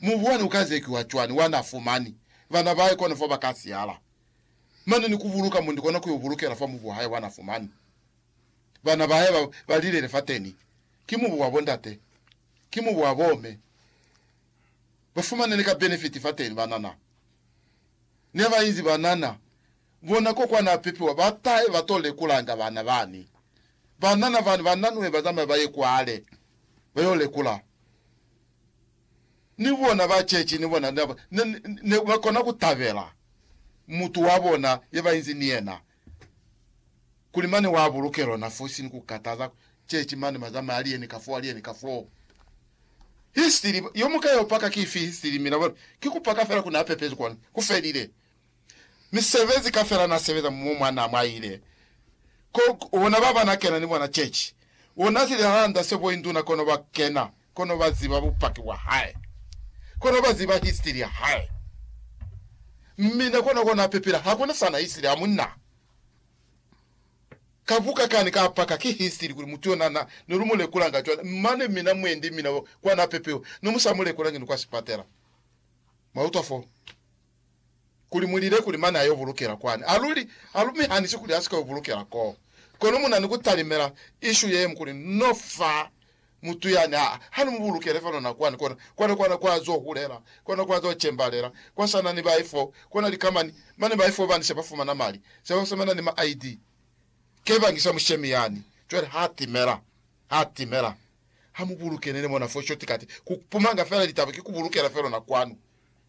Mubwani uka zekiwa cwani wana fumani bana bahae kono fo baka siala? Mane ni kubuluka mundi kona kuyo bulukela fa mubu wahae wana fumani bana bahae ba ba lilele fateni. Ki mubu wa bondate, ki mubu wa bome. Ba fumane ni ka benefiti fateni banana. Neba inzi banana. Bona ko kwa na pipiwa ba tahe ba to lekulanga bana bani. Banana bani ba nanwe ba zamaye ba ye kwale ba yo lekula. Ni bona ba chechi ni bona ne, ne, ne ba kona ku tabela mutu wa bona ye ba inzi ni yena kuli mane wa buluke lona fosi ni ku kataza chechi mane ba zamaya ali yeni ka fo, ali yeni ka fo. Histiri, yo mu ka yo paka ki ifi histiri? Mina bona ki ku paka fela ku na pepezi kona ku felile. misebezi kafela na sebeza mumo mwa na mwaile ko ona baba na kena ni bona chechi ona si lilanda se bo induna kono ba kena kono ba ziba bupaki bwa hae kono ba ziba history ya hae mmina kona kona pepela hakuna sana history ya munna ka buka kani ka paka ki history kuli mutu yona na ne lu mulekula nga cwale mane mina mwendi mina kwa na pepewa no musa mulekula ngi ni kwa sipatela mwa utwa fo kuli mu lile kuli mane a yo bulukela kwani. A luli, a lu mi hanisi kuli a si ka yo bulukela koo. Kono mu na ni ku talimela ishu ye ñwi kuli, No fa mutu yani, ha, ha ni mu bulukele fano na kwani, kona, kona, kona kwa zo hulela, kona kwa zo cembalela, kwa sa na ni bai fo, kona likamani, mane bai fo bani se ba fumana mali, se ba fumana ni ma ID. Ke bangi sa mushemi yani. Cwale ha timela, ha timela. Ha mu bulukele ni mona fo shortcut, ku pumanga fela litaba ki ku bulukela felo na kwanu.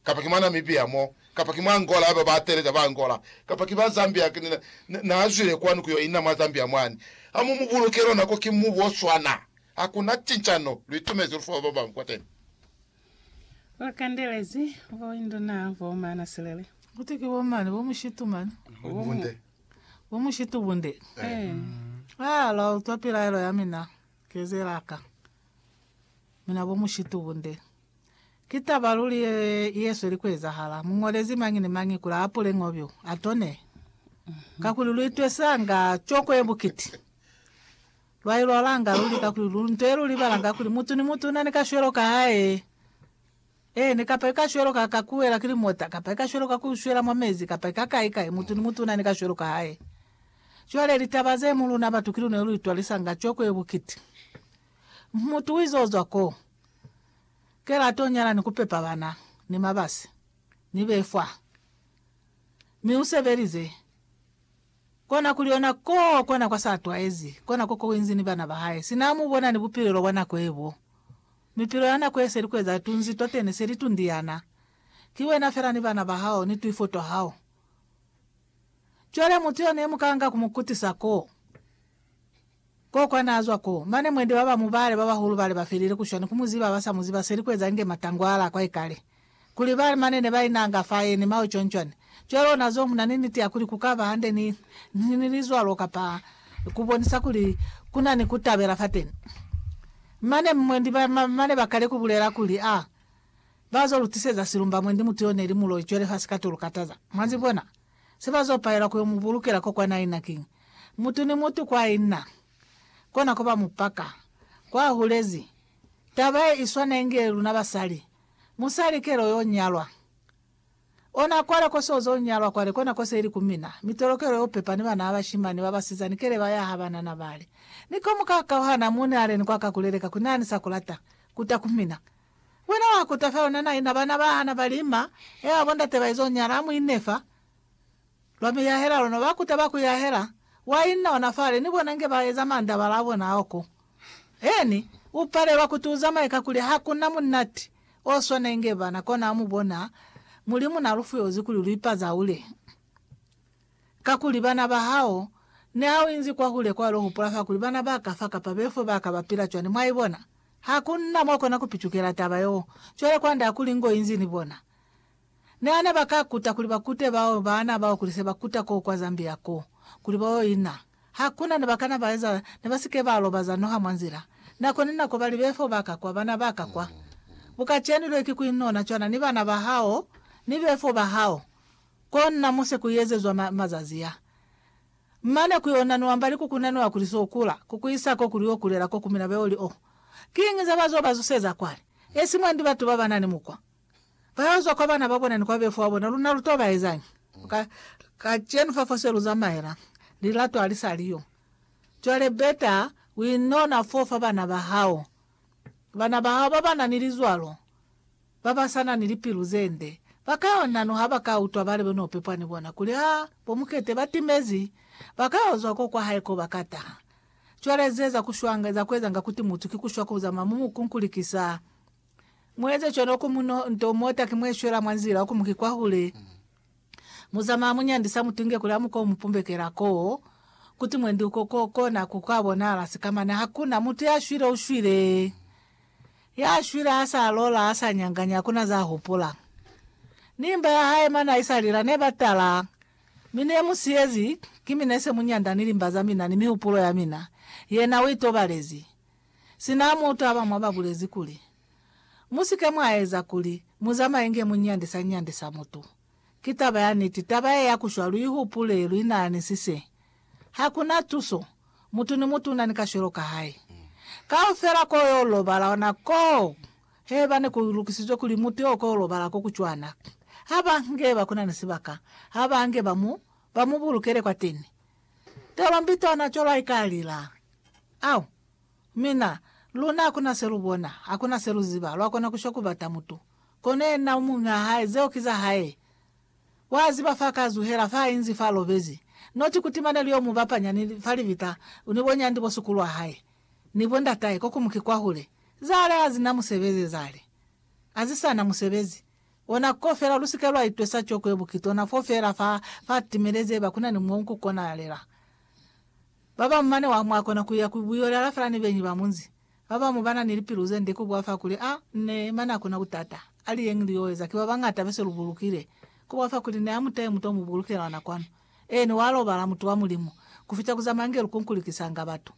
kapa ki mwa Namibia mo, kapa ki mwa Angola haiba ba teeleza ba Angola, kapa ki ba Zambia ki na, na, na zwile kwanu kuyo ina mwa Zambia mwani. Ha mu mu buluke lona ko ki mubu o swana. Ha ku na cincano, lu itumezi lu fa ba babañwi kwateni. Lu kandelezi bo induna bo mana silele. Kuti ki bo mani, bo mushitu mani. Bo bunde. Bo mushitu bunde. Eh. Ah, lwa utwa pilaelo ya mina, kezela ka. Mina bo mushitu bunde. Ki taba luli ye yesweli kuezahala. Muñolezi mañi ni mañi kuli aapule ñobyo, atone. Kakuli luitwesanga coko yebukiti. Lwailwalanga luli kakuli lu nto yelulibalanga kuli mutu ni mutu unani kashwelo kahae. Eeni, kapa ikashwelo ka ka kuwela ki limota, kapa ikashwelo ka kushwela mwa mezi, kapa ika kai kai, mutu ni mutu unani kashwelo kahae. Cwale litaba ze mu luna batu ki luna yeluitwalisanga coko yebukiti. Mutu uize ozwa koo. Kela to nyala ni ku pepa bana, ni mabasi, ni befwa. Mi u sebelize. Kona kuli ona ko kona kwa sa twaezi, kona ko ko inzi ni bana ba hae. Sina amu bona ni bupilelo bwa nako ye bo. Mipilo ya nako ye se li kueza tunzi twateni, se li tundiana. Ki wena fela ni bana ba hao, ni twifo twa hao. Cwale mutu yone mu kanga ku mu kutisa ko. Koko naazwa ko, mane mwendi ba ba mu bale ba bahulu bale ba felile ku shwa ni ku mu ziba ba sa mu ziba seli ku eza inge matangwala a kwa ikale. Kuli bale mane ne ba inanga fa yeni mao cwancwani. Cwale ona zo muna ni niti ya kuli ku ka ba hande ni, ni, ni lizwalo kapa ku bonisa kuli ku na ni ku tabela fateni. Mane mwendi ba, ba mane ba kale ku bulela kuli, Ah, ba zo lu tiseza silumba mwendi mutu yo neli muloi cwale fa sikatulu kataza. Mwa zibona? Se ba zo paela ku yo mu bulukela ko kwa naina kiñi? Mutu ni mutu kwa i na, kona ko ba mu paka. Kwa hulezi, taba ye i swana inge luna basali. Musali kele o yo nyalwa. Ona kwale ko se o zo nyalwa kwale, kona ko se li ku mina. Mi tolokelo yo pepa ni bana ba bashimani ba basizani kele ba yaha banana bale. Ni ko mu ka kauhana, mu nealeni kwa ka ku leleka ku na ni sa ku lata, ku ta ku mina. Wena wa kuta fa yona naina bana ba hana ba lima, ea bo ndate ba izo nyala, mu inne fa lwa miyahela lona, ba kuta ba ku yahela, wa inna ona fale, ni bona nge ba eza mandabala a bona a oko. Eeni, u palelwa kuti u zamaye kakuli ha ku na munati o swana inge bana, kona ha mu bona Mulimu na lu fuyozi kuli lu ipazaule. Kakuli bana ba hao, niha u inzi kwahule kwalo hupula fa kuli bana ba ka fa kapa befo ba ka ba pila cwani, mwa i bona? Ha ku na mwa kona ku picukela taba yeo. Cwale kwand'a ha kuli ngo inzi ni bona. Niha ne ba ka kuta kuli ba kute bao, baana bao kuli se ba kuta koo kwa Zambia koo, kuli ba yo ina, ha ku na ne ba kana ba eza, ne ba si ke ba lobaza noha mwa nzila. Nako ni nako ba li, Befo ba ka kwa, bana ba ka kwa. Bukacenu lwe ki ku inona cwana ni bana ba hao, ni befo ba hao. Kona muse kuiezezwa ma, mazazi a. Mane kuyonanuwa mbali kukunanuwa kuli so kula, kukuisa ko kuli yo kulela ko kumina beo li o. Kiñi za bazo ba zuseza kwale? Esi mwandi batu ba banani mukwa. Bayo zwa kwa bana ba bona ni kwa befu wa bona, luna lu to ba ezañi? Ka, kacenu fa fose lu zamaela, lilato ali sa li yo. Cwale beta, uinona fo fa bana ba hao. Bana ba hao babana ni lizwalo babasana ni lipilu zende bakayo nano habaka utwa balebe no pepwa ni bona kuli ha bo mukete batimezi, bakayo zwa ko kwa hae ko baka taha. Cwale ze za kushwanga za kuezanga kuti mutu ki kushwa kuzama mu mukunkulikisa, mueze cwalo ku muno nto mota ki mweshwela mwa nzila oku muki kwahule. Muzama amunyandisa mutunge kuli amuko umupumbekela koo kuti mwendi uko ko kona ku ka bonahala sika mane hakuna mutu ya shwile ushwile ya shwile asa lola asa nyanganya hakuna za hupula ni mba ya hae mane aisa lila ne ba tala mi ne mu siyezi ki mi nese munyanda ni limba za mina ni mihupulo ya mina yena uitobalezi sina mutu abamwa ba bulezi kuli Mu si ke mwa eza kuli mu zamaye nge mu nyandisa nyandisa mutu. Ki taba ya niti, taba ye ya ku shwa lu i hupule lu inahanisise. Ha ku na tuso. Mutu ni mutu u na ni kashwelo ka hae. Kaufela ko yo lobala ona koo, haiba ne ku lukisizwe kuli mutu yo ko lobala ko ku cwana, ha ba nge ba ku na ni sibaka, ha ba nge ba mu, ba mu bulukele kwateni. Telo mbi tona cwalo ha i ka lila. Au! Mi na, luna hakuna se lu bona, hakuna se lu ziba, lwa kona ku shwa ku bata mutu. Kono yena u muñwi wa hae, zeo ki za hae. Wa ziba fa ka zuhela, fa inzi, fa lobezi. Not ku tima ne li yo mu bapanya ni, fa libita, ni bo nyandi bo sukulu wa hae, ni bo ndatahe, ko ku mu ki kwahule. Zale ha zi na musebezi zale. A zi sa na musebezi. Ona ko fela, lu si ke lwa itwesa coko ye bukitona fo fela fa, fa timelezi haiba kuna ni mo ku konahalela. Babamu mane wa mwakona kuya ku buyo lya lafela ni benyi ba munzi. Babamu bana ni lipilu zende ku bwafa kuli a ne mane akona kutata, ali yeñi li yo eza ki babañata bese lu bulukile. Ku bwafa kuli ne amutahe mutu omu bulukela ona kwanu. Eeni, wa lobala, mutu wa Mulimu, kufita ku zamaya nge lu kunkulikisanga batu,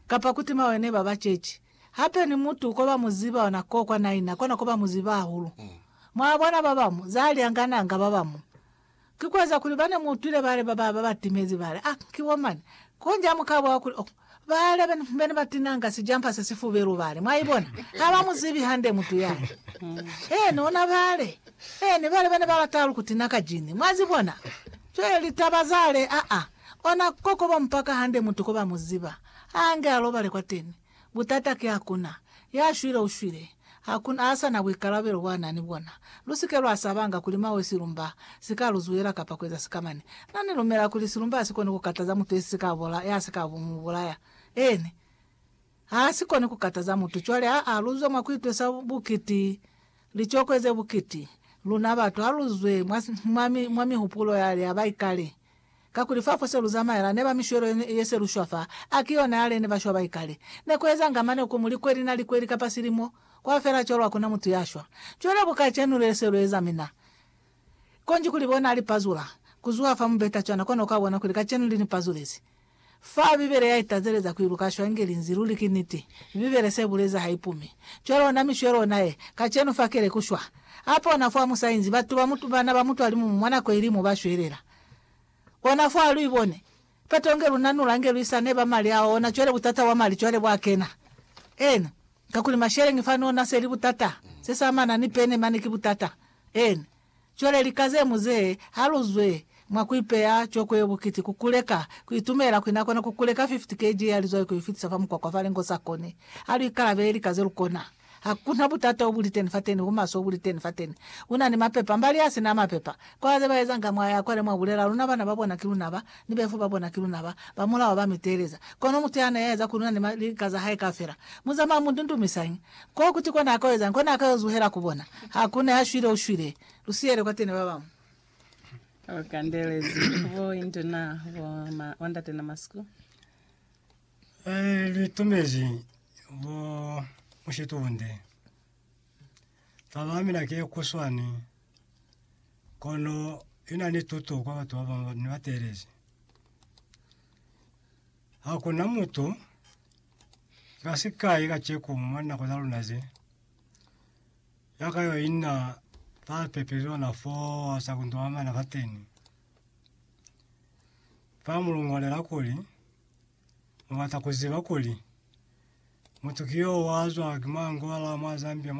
kapa ku tima wene ba ba ceci. Hape ni mutu ko ba mu ziba ona ko kwa naina, kona ko ba mu ziba hahulu. Mwa bona, babamu za lyangananga babamu. Ki kueza kuli bane muutwile bale bababa batimezi bale, Ah, ki bo mani. Konji hamukabona kuli, Oh, bale bene batinanga sijampa se sifubelu bale. Mwaibona? Haba muzibi hande mutu yani. Eeni, ona bale. Eeni, bale bene balata halu kutina ka jini. Mwazibona? Cwale litaba zale, aa, ona kokobo mpaka hande mutu koba muziba, haange alobale kwateni. Butata ki hakuna ya shwile u shwile, hakuna a sa na buikalabelo bwa na ni bona. Lu si ke lwa sabanga kuli mwa we silumba si ka lu zuhela kapa ku eza sikamani. Na ni lumela kuli silumba ha si koni ku kataza mutu ye si ka bola, ya si ka mu bulaya. Eeni. Ha si koni ku kataza mutu. Cwale ha a luzwa mwa ku itwesa bukiti, licokwe ze bukiti, luna batu ha lu zwe mwa, mwa, mwa mihupulo yale ya baikale. Kakuli fa fo se lu zamaela neba mishwelo ye ye se lu shwa fa, a ki yona yale ne ba shwa ba i kale. Ne ku ezanga mane ku mu likweli na likweli kapa silimo, kwa fela cwalo ha ku na mutu ya shwa. Cwale ku kacenu le se lu eza mina, konji kuli bona li pazula ku zuha fa mubeta cwana kona u ka bona kuli kacenu li ni pazulezi. Fa Bibele ya itazeleza ku iluka shwangi linzi luli ki niti, Bibele se buleza ha ipumi. Cwalo ona mishwe lona ye, kacenu fa kele ku shwa. A pona fo a musainzi, batu ba mu, bana ba mutwalimumu mwa nako ili mo ba shwelela. Ona fo a lu ibone. Peto nge lu nanula, nge lu isa neba mali ao, ona cwale butata bwa mali cwale bwa kena. Ena. Kakuli masheleñi fa nona seli butata, se samana ni pene mane ki butata. Ene. Cwale lika ze mu ze ha lu zwe mwa ku ipeya coko yo bukiti ku kuleka, ku itumela kuli na kona ku kuleka 50 kg ya lizwai ku i fitisa fa mukwakwa fa lengo sa koni. Ha lu ikalabele lika ze lu kona. Ha kuna butata obuli teni fateni, bumaswe obuli teni fateni. Una ni mapepa, mbali ya sina mapepa. Kwa ze ba ezanga mwa ya kwale mwa bulela, luna bana ba bona ki luna ba. Ni befo ba bona ki luna ba ba mulao ba mi teeleza. Kono mutu ya na ya eza ku luna ni ma lika za hae kaufela, mu zamaya mu ndundumisañi? Ko kuti ko na ka ezañi? Ko na ka yo zuhela ku bona? Ha ku na ya shwile, u shwile. Lu siyele kwa tene ba bañwi. Lu kandelezi ku bo induna bo ma, bo ndate na masiku. Ee, lu itumezi bo mushitunde. Taba ya mina ke kuswani, kono ina ni tuto kwa batu babanga ni ba teelezi. Hakuna mutu ka sikai kaceku mwa nako za luna ze, ya ka yo inna fa pepelelo na foo sa kuntu amana fateni. Fa mu longolela kuli, Mubata kuziba kuli mutu ki yo wazwa ki manguba la mwa Zambia?